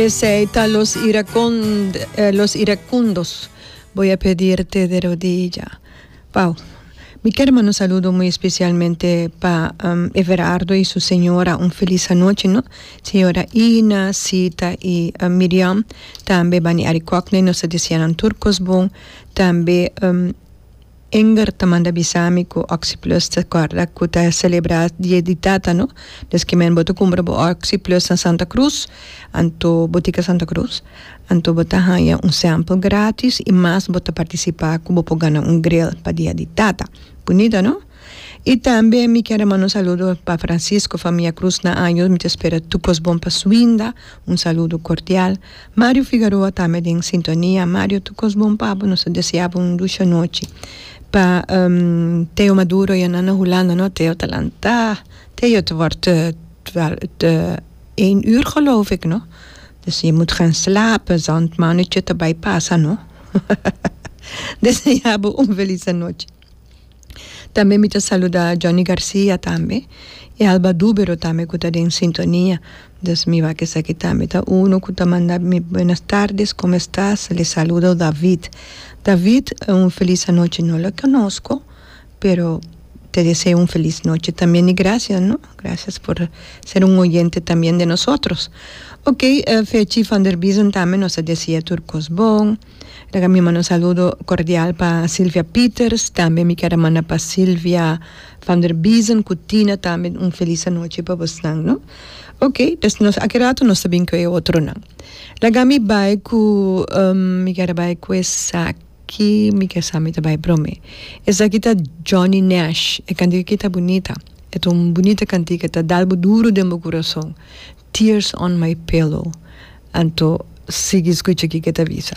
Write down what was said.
Esei ta los los iracundos. Boy a pedirte de rodilla. Wou. Mi ker manda un saludo muy especialmente pa Everardo y su señora un feliz anochi no. Señora Ina, Sita y Miriam tambe bani Arikokney nos ta deseanan tur cos bon tambe. Inger ta manda bisa mi cu Oxy Plus ta corda cu ta celebra Dia di Tata no. Des ki men bo ta cumpra bo Oxy Plus na Santa Cruz, anto Botica Santa Cruz, anto bo ta haya un sample gratis y mas bo ta participa cu bo por gana un grill pa Dia di Tata. Bunita no? Y tambe mi kier a manda un saludo pa Francisco Famia Cruz na años mi ta spera tu cos bon pa su winda, un saludo cordial. Mario Figaroa ta me den sintonia Mario tu cos bon papu nos ta desea bo un lucha nochi pa Theo Maduro ya na na Hulanda no Theo ta lanta Theo het word te een uur geloof ik no dus je moet gaan slapen zand mannetje ta bay pasa no desea bo un feliz anochi. Tambe mi ta saluda Johnny Garcia tambe y Alba Dubero tambe cu ta den sintonia dus mi wak esaki tambe ta uno cu ta manda mi buenas tardes como estas le saludo David, David un feliz anochi no lo conosco pero te deseo un feliz nochi también y gracias no gracias por ser un oyente también de nosotros ok Fechi Vanderbiesen tambe nos ta desear tur cos bon. Esaki ta mi manda un saludo cordial pa Silvia Pieters, tambe mi kier a manda pa Silvia van der Biezen cu Tina tambe un feliz anochi pa bosnan no ok pues nos aki rato nos ta bin cu e otronan laga mi bay cu mi kier a bay cu esaki mi kier sa mi ta bay prome esaki ta Johnny Nash e cantica aki ta bunita e ta un bunita cantica e ta dalbo duro den bo curason. Tears on my pillow, anto sigui scucha kico e ta bisa.